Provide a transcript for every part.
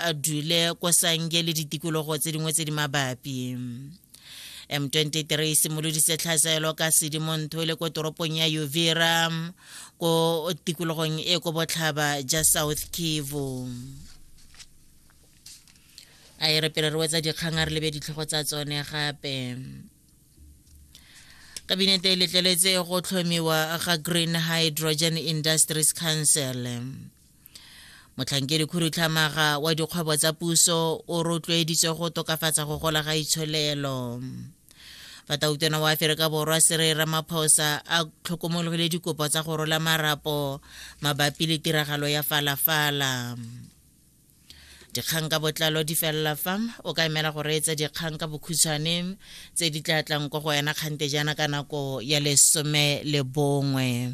a dule ko sange le ditikologo tse dingwe tse di mabapi m23 e simolodise tlhasaelo ka sedimontho le ko toropong ya uvira ko tikologong e ko botlhaba ja south kivu a e re pele re wetsa dikgang a re lebe ditlhogo tsa tsone gape kabinete e letleletse go tlhomiwa ga green hydrogen industries council motlhankedi khudutlhamaga wa dikgwebo tsa puso o rotloeditswe go tokafatsa go gola ga itsholelo fatautona wa aferika borwa sere ramaphosa a tlhokomologile dikopo tsa go rola marapo mabapi le tiragalo ya falafala dikgang ka botlalo di felela fa o ka emela go reetsa dikgang ka bokhutshwane tse di tla tlang kwa go wena kgante jaana ka nako ya lesome le bongwe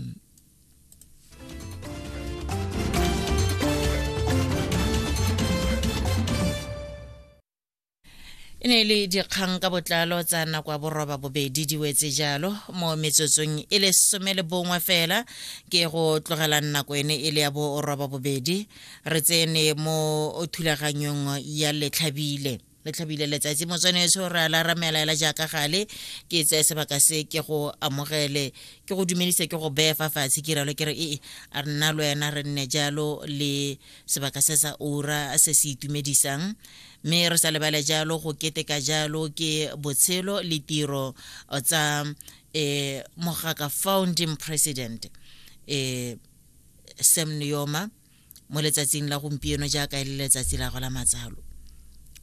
e ne e le dikgang ka botlalo tsa nako ya boroba bobedi di wetse jalo mo metsotsong e le some le bongwe fela ke go tlogelang nako ene e le ya boroba bobedi re tsene mo thulaganyong ya letlhabile le tlhabile letsatsi motswanetso re a la ramelaela jaaka gale ke tseye sebaka se ke go amogele ke go dumedise ke go beye fa fatshe ke ralo ke re ee a re nna le wena re nne jalo le sebaka se sa ura se se itumedisang mme re sa lebale jalo go keteka jalo ke botshelo le tiro tsa um eh, mogaka founding president um eh, sam neoma mo letsatsing la gompieno jaaka e le letsatsi la go la matsalo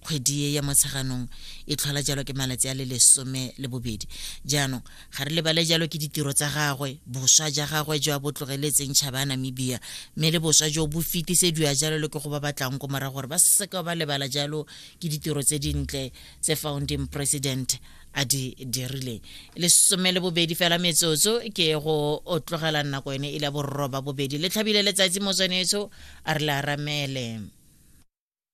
kgwedi e ya motsheganong e tlhola jalo ke malatsi a le lesome le bobedi jaanong ga re lebale jalo ke ditiro tsa gagwe boswa ja gagwe jo a bo tlogeletseng tšhaba ya namibia mme le boswa jo bo fetisediwa jalo le ke go ba batlang ko morago gore ba seka ba lebala jalo ke ditiro tse dintle tse founding president a di dirileng lesome le bobedi fela metsotso ke go o tlogela nako ene e le borroba bobedi le tlhabile letsatsi motswanetso a re le aramele